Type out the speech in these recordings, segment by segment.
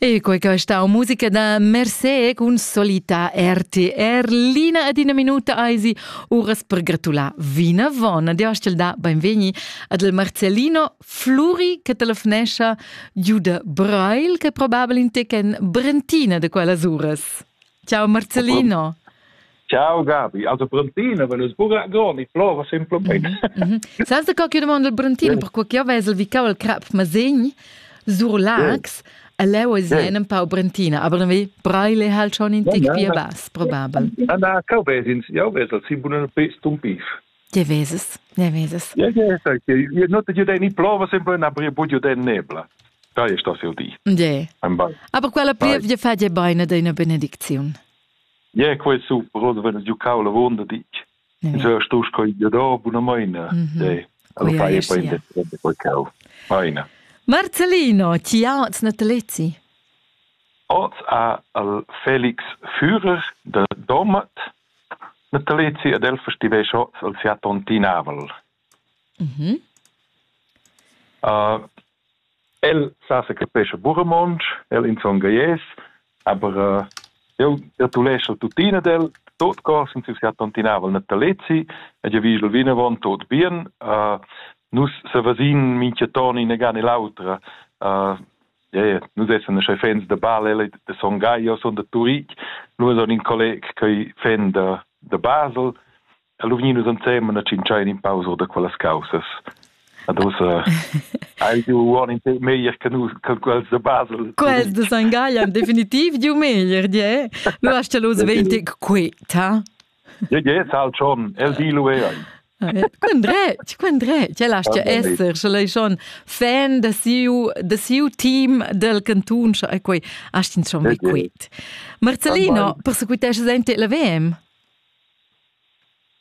E quei che stau musica da Mercé cun solita RTR Lina ad ina minuta eisi uras per gratular vinavon. Di hostel da benvegni ad il Marcellino Fluri che telefonescha giu de Brail che probabile in tec en Brentina de quellas uras. Ciao Marcellino. Ciao Gabi, also Brentino, wenn es pura groni, flora simplemente. Mm -hmm. Sa da qualche domanda del Brentino, per quel che io vesel vi cau il crap masegn, sur Lax, e leu es en un pau Brentina, aber dann vi Breile halt schon in tic via bas, probabel. Na, na, cau vesins, io vesel, si bunen pis tum pif. Je veses, ne veses. Je, je, je, no te judei ni plova, sempre na brie bud judei nebla. Da ist das ja die. Je. Aber quella plievia fa je beine de una benedicziun. Yeah, quei super, oder wenn du kau lavon ditg. Mhm. So stus coi de do bunamaina. Mhm. Alla fai poi de quei kau. Aina. Marcelino, ti auts natalezi? Oz a al Felix Führer de Domat natalezi ad el festiveix oz al Fiat Tontinavel. Mhm. Uh, El sa s'occupescha buca romontsch, el inzongheies, aber jeu ertuleschel tuttina d'el tot co sin siu siat tontinaivel natalezi ed jeu vigel vinavon tot bien. nus sevesin mintgaton inaga ne l'autra. ie, nus essan aschi fans da bal, el ei da Son Gagl, io sun da Turitg, lu son in colleg ch'ei fan da, da Basel. Ha lu vegniu nus ensemen a tschintschar in pau sur da quellas caussas. Ad ussa ha il giu uonn in tec meglier che nus, che quels da Basel. Quels da San Gallen definitiv giu meglier, die. Lu hast du los venti quieta. Ja, ja, sal schon, el di lu ei. Quin dretg, quin dretg, el hast ja esser, sche lei schon fan da siu, da siu team del cantun, sche ei quei, hast ins schon quiet. Marcellino, persequitesches ente la VM?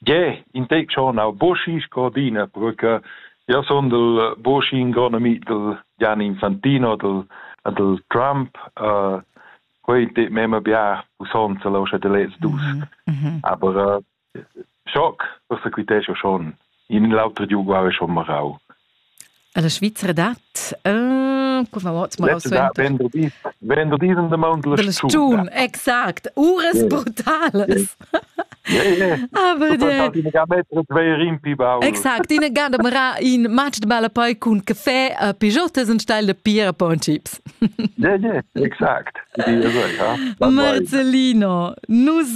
Gie, in tec schon aunc buca sco d'ina bruca. Jeu sundel buca in gron ami dal Gianni Infantino, dal dal Trump. quei ei tut memma bia pussonza lu sche ti lez dus. Aber schoc, forsa quitescha schon. In l'auter giu guarda schon marau. Alla Svizzera dat co va ot ma vendu vendu diesen de mount la stun exact uras brutales aber exact ina gada mara in match de balla poi cun caffè a pijotas un style de pira po un chips yeah yeah exact Marcellino nus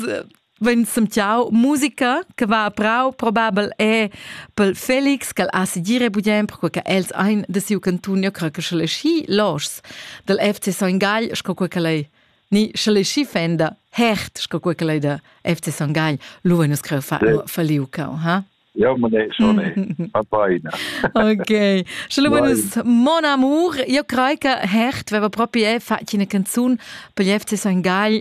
Vegn semtiau musica che va a prau probabel è pel Felix ch'el ha segire budien perquei che els ein de siu cantun ja cre che sche schi loschs dal FC Son Gagl sco quei che lei ni sche schi fenda hert sco quei che lei da FC Son Gagl lu vegn scre fa faliu cau ha Ja, ma ne schon a beina. Ok. Sche buenas mon amour, io crei che hert veva proprio è fatto una canzone per gli FC Son Gagl